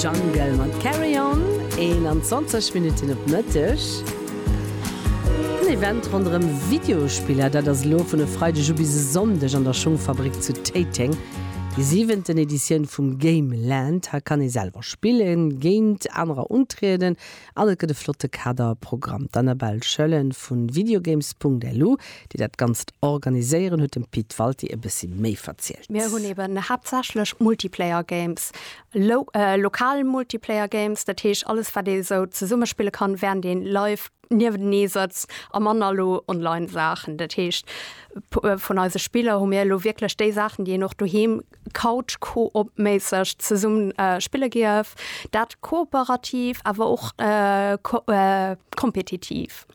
Jungle mat Carry On, 21 Minutten op Mëtteg. En Event ronderëm Videospiller, dat ass elo vun e Freideg u bis e Sonndeg an der Schungfabrik zu Téiteng. Déi siwenten Editioun vum Gameland. Hei kann ee selwer spillen, géint anerer untrieden An et gëtt e flotte Kaderprogramm. D'Annabelle Schöllen vu Videogames.lu, déi dat Ganzt organiséieren, huet dem Pit Walti e bëssi méi verzielt. Mir hunn eben haaptsächlech Multiplayer Games. Lokal Multiplayer Games, dat heescht alles, wat ee sou zesumme spille kann, wärend ee live niewentenee sëtzt, a manner elo online Saachen. Dat heescht, vun eise Spiller hu mir elo wierklech déi Saachen, déi een och doheem Couch-Koop-méisseg zesummen spille géif, dat kooperativ, awer och kompetitiv.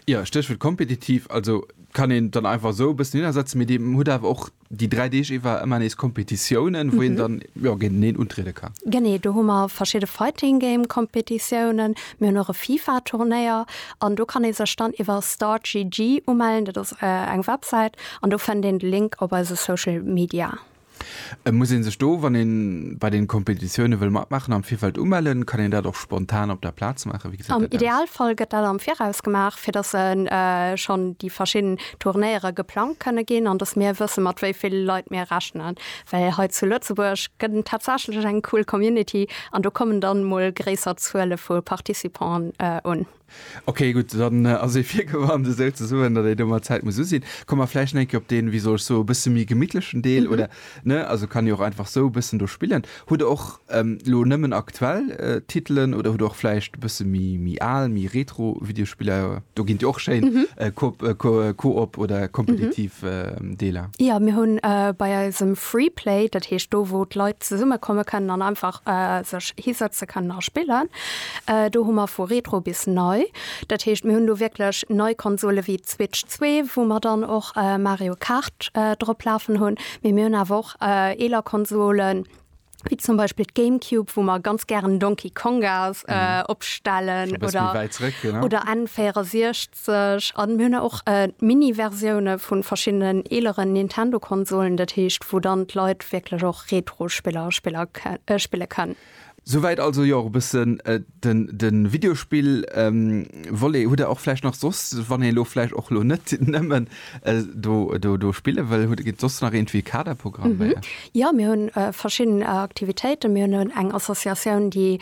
Jo, Stéchwuert kompetitiv. Also kann een dann einfach esou e bëssen hinnersetzen, mee Dir hutt awer och déi dräi Deeg iwwer ëmmer nees Kompetitiounen, wou een dann jo géinteneen untriede kann. Genee, do hu mer verschidde Fighting Game-Kompetitiounen, mir hunn och e FIFA-Turnéier an do kann ee sech dann iwwer Startgg umellen, dat ass eng Websäit, An do fennt een de Link op eise Social Media. Et muss een sech do, wann een bei den Kompetitiounen wëll matmaachen, am Virfeld umellen. Kann een dat och spontan op der Plaz maachen? Wéi gesäit dat aus? Am Idealfall gëtt dat am Viraus gemaach, fir dass schonn déi verschidden Turnéiere geplangt kënne ginn an dass mir wëssen, mat wéi ville Leit mir rechnen. Well hei zu Lëtzebuerg gëtt en tatsächlech eng cool Community an do kommen dann emol gréisser Zuele vu Participanten un. Ok, gutt, dann ass ee virgewarnt, esou ze soen, datt ee do mat Zäit muss usinn. Komme mer vläicht eng Kéier op deen, wéi soll ech soe bësse méi gemittlechen Deel, oder ne, also kann ee och einfach sou bëssen do spillen. Hutt Der och elo nëmmen aktuell Titelen oder hutt Der och vläicht e bësse méi al, méi retro Videospiller? Do ginn et jo och schéin Coop oder kompetitiv Deeler. Jo, mir hunn bei eisem Freeplay, dat heescht do wou d'Leit zesummekomme kënnen an einfach sech hisëtze kënnen a spillen, Do hu mer vu Retro bis nei. Dat heescht, mir hunn do wierklech nei Konsole wéi d'Switch zwee, wou mer dann och Mario Kart drop lafen hunn. Mee mir hunn awer och eeler Konsolen, wéi zum Beispill d'Gamecube, wou mer ganz gären Donkey Konga opstellen oder N64. A mir hunn och Mini-Versioune vu verschiddenen eeleren Nintendo-Konsolen. Dat heescht, wou dann d'Leit wierklech och Retro-Spiller spille kënnen. Souwäit also jo och e bëssen den den Videospill Volet. Hutt der och vläicht nach soss, wann een elo vläicht och elo net nëmmen do do do spille wëll, hutt gitt soss nach iergendwéi Kaderprogramm bei iech? Jo, mir hunn verschidden Aktivitéiten. Mir hunn eng Associatioun déi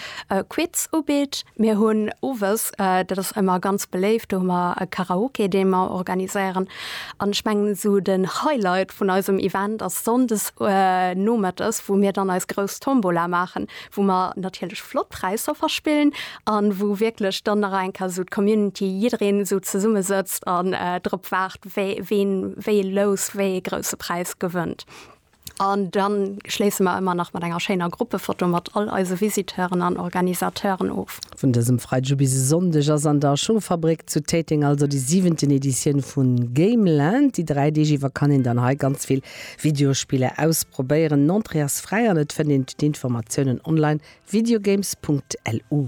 Quiz ubitt. Mir hunn owes, dat ass ëmmer ganz beléift, do hu mer e Karaoke dee mer organiséieren. An ech mengen esou den Highlight vun eisem Event ass Sonndes Nomëttes wou mir dann eis grouss Tombola maachen, wou mer natierlech flott Präisser verspillen an wou wierklech dann nach eng Kéier esou d'Community, jiddereen esou zesumme sëtzt an drop waart wee ween wéi ee Lous, wéi ee grousse Präis gewënnt. An dann schléisse mer ëmmer nach mat enger schéiner Gruppefoto mat all eise Visiteuren an Organisateuren of. Vun dësem Freideg u bis e Sonndeg ass an der Schungfabrik zu Téiteng also déi siwenten Editioun vu Gameland. Déi 3 Deeg iwwer kann een dann hei ganz vill Videospiller ausprobéieren. Den Entrée ass fräi an et fënnt een d'Informatiounen online, videogames.lu.